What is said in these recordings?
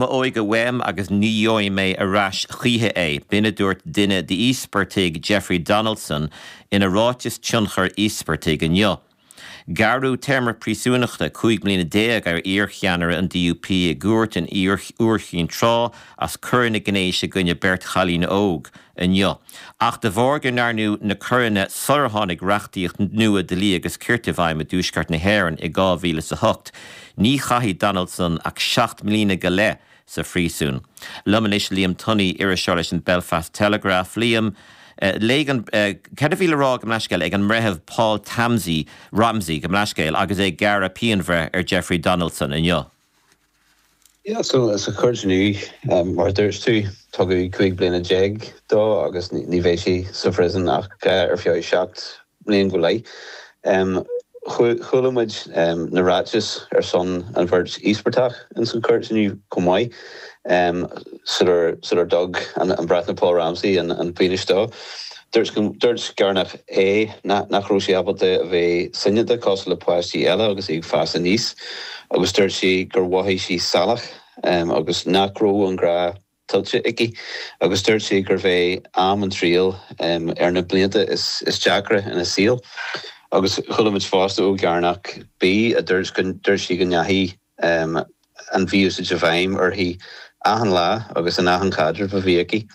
M'óige uaim agus ní gheobhaidh mé ar ais choíche é, b'in a dúirt duine d'íospartaigh Jeffrey Donaldson ina ráiteas tionchair íospartaigh inniu. Gearradh téarma príosúnachta cúig bliana déag ar iarcheannaire an DUP i gcúirt in Iúr Chinn Trá as coireanna gnéis i gcoinne beirt chailín óg a inniu. Ach de bharr gur ndearnadh na coireanna sular tháinig reachtaíocht nua dlí agus cirt i bhfeidhm i dTuaisceart na hÉireann i 2008, ní chaithfidh Donaldson ach seacht mbliana go leith sa phríosún. Liom anois Liam Tunney iriseoir leis an Belfast Telegraph. Liam, léigh an, cad a bhí le rá, gabh mo leithscéal, ag an mBreitheamh Paul Tamsey, Ramsey, gabh mo leithscéal, agus é ag gearradh pianbhreithe ar Jeffrey Donaldson inniu? Sea, so sa chúirt inniu, mar a dúirt tú, tugadh cúig bliana déag dó agus ní bheidh sé sa phríosún ach ar feadh seacht mbliain go leith. Chuala muid na ráitis ar son an bheirt íospartach ins an chúirt inniu chomh maith, sular dtug an Breitheamh Paul Ramsey an pionós dó. Dúirt Gearánach A nach raibh sí ábalta a bheith soineanta cosúil le páistí eile agus í ag fás aníos agus dúirt sí gur mhothaigh sí salach agus nach raibh an grá tuillte aici agus dúirt sí gurbh é am na trialach ar na blianta is deacra ina saol agus chualaimid fosta ó Ghearánach B a dúirt sí go ndeachaigh an mhí-úsáid i bhfeidhm uirthi achan lá agus in achan caidreamh a bhí aici.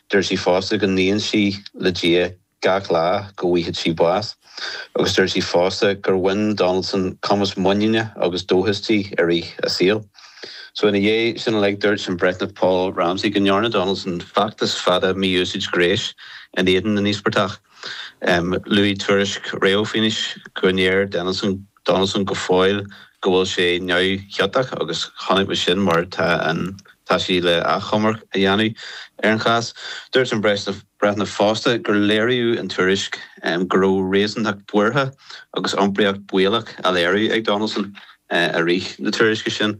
Dúirt sí fosta go nguíonn sí le Dia gach lá go bhfaigheadh sí bás, agus dúirt sí fosta gur bhain Donaldson cumas muiníne agus dóchas di i rith a saoil. So ina dhiaidh sin uilig, dúirt an Breitheamh Paul Ramsey go ndearna Donaldson feachtas fada mí-úsáide gnéis in éadan na n-íospartach. Luaigh tuairisc réamhphionóis go ndeir Donaldson go. Donaldson go fóill go bhfuil sé neamhchiontach agus chonaic muid sin mar tá an tá sí le achomarc a dhéanamh ar an chás. Dúirt an Breitheamh fosta gur léirigh an tuairisc go raibh réasúntacht buartha agus iompraíocht baolach á léiriú ag Donaldson i rith na tuairisce sin.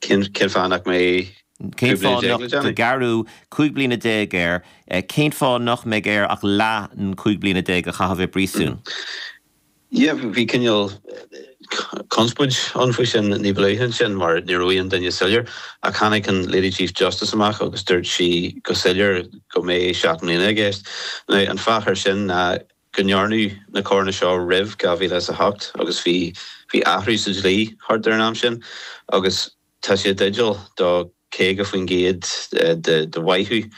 Cén fáth nach mbeidh? Cén fáth ó gearradh cúig bliana déag air? Cén fáth nach mbeidh air ach leath an cúig bliana déag a chaitheamh i bpríosún? Sea, bhí cineál conspoid ann faoi sin ní ba luaithe ansin mar ní raibh aon duine soiléir. Ach tháinig an Lady Chief Justice amach agus dúirt sí go soiléir go mbeidh seacht mbliana i gceist. Now an fáth ar sin ná go ndearnadh na coireanna seo roimh dhá mhíle is a hocht agus bhí bhí athrú sa dlí thart ar an am sin agus tá sé i dteideal do caoga faoin gcéad de de mhaitheamh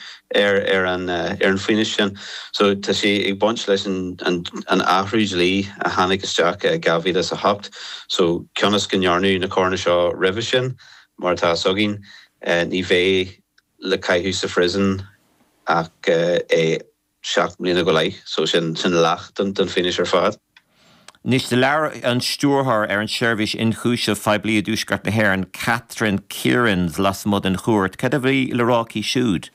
ar ar an ar an phionós sin so tá sé ag baint leis an an an athrú dlí a tháinig isteach i dhá mhíle is a hocht so cionn is go ndearnadh na coireanna seo roimhe sin mar atá a fhios againn ní bheidh le caitheamh sa phríosún ach é seacht mbliana go leith, so sin leath den phionós ar fad. Anois, do labhair an Stiúrthóir ar an tSeirbhís Ionchúiseamh Phoiblí i dTuaisceart na hÉireann, Catherine Kierans, lasmuigh den chúirt, cad a bhí le rá aici siúd?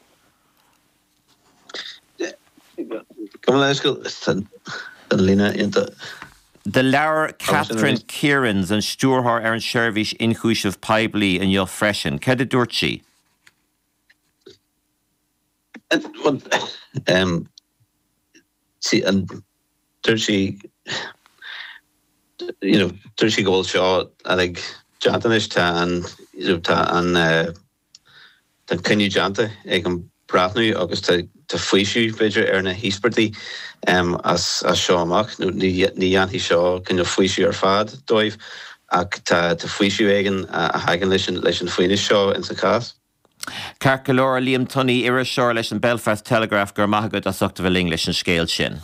Do labhair Catherine Kierans, an Stiúrthóir ar an tSeirbhís Ionchúiseamh Poiblí, inniu freisin, cad a dúirt sí? Dúirt sí go bhfuil seo uilig déanta anois, tá an cinneadh déanta ag an bhreitheamh agus tá faoiseamh, b'fhéidir, ar na híospartaigh as seo amach. Ní dhéanfaidh seo faoiseamh ar fad dóibh ach tá faoiseamh éigin a thagann leis an phionós seo ins an chás. Ceart go leor, a Liam Tunney, iriseoir leis an Belfast Telegraph, go raibh maith agat as ucht a bheith linn leis an scéal sin.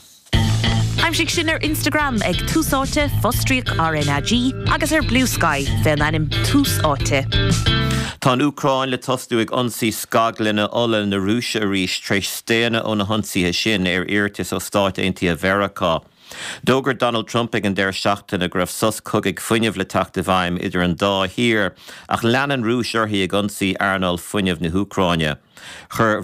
Aimsigh sinn ar Instagram ag Tús Áite, fostríoc RnaG, agus ar Bluesky, fé an ainm Tús Áite. Tá an Úcráin le tosnú ag ionsaí scaglanna ola na Rúise arís tar éis staonadh ó na hionsaithe sin, ar iarratas ó Stáit Aontaithe Mheiriceá. D'fhógair Donald Trump ag an deireadh seachtaine go raibh sos cogaidh fuinnimh le teacht i bhfeidhm idir an dá thír ach lean an Rúis uirthi ag ionsaí earnáil fuinnimh na hÚcráine. Chuir.